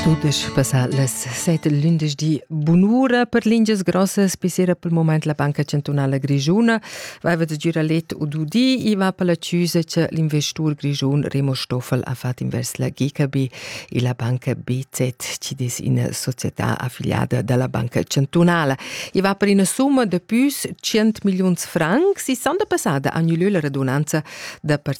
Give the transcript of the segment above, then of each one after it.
Tudisch passà las set lündeschdi bunura per lingias grossas pissera pel moment la Banca Chantunala Grischuna vaiva da girar let u du di i va per la chüsa cha l'investur grischun Remo Stoffel ha fat invers la GKB e la banca BZ chi es üna società affiliada da la Banca Chantunala. I va per üna summa da püs 100 milliuns francs e s'han da passada a gnü lö la radunanza da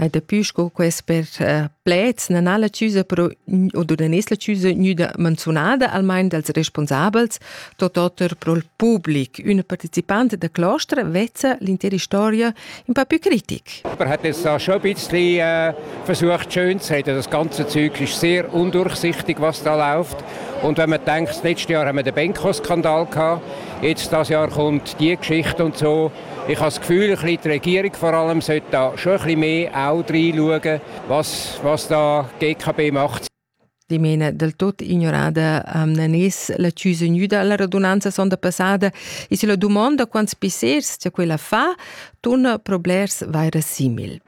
Hai daplü sco quester uh, pleds non ha la chiusa però o dun es la chiusa gnüda manzunada almain dals responsabels, tot oter pro il public. Üna partecipante da clostra vezza l'intera storia in pa più critic. Man hat es auch schon ein bisschen äh, versucht schön zu sagen, das ganze Zeug ist sehr undurchsichtig, was da läuft. Und wenn man denkt, das letzte Jahr haben wir den Benko-Skandal gehabt, jetzt das Jahr kommt die Geschichte und so. Ich habe das Gefühl, die Regierung vor allem sollte da schon ein bisschen mehr auch reinschauen, was, was da die GKB macht. Die meine del tutto ignorada um, non es la chiusa nuda la radunanza sonda passada e se la domanda quants pissers c'è quella fa, turna problers vaira simil.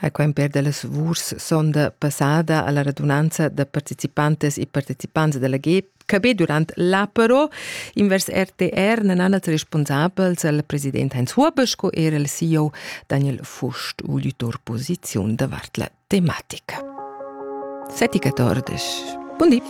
ha quimper da las lavurs sonda passada alla radunanza da participantas e partecipants dalla GEP cabé durant l'apero invers RTR non han els responsabels al president Heinz Huber sco er al CEO Daniel Fust ulitor posiziun davart la tematica. 7 14. Buon di.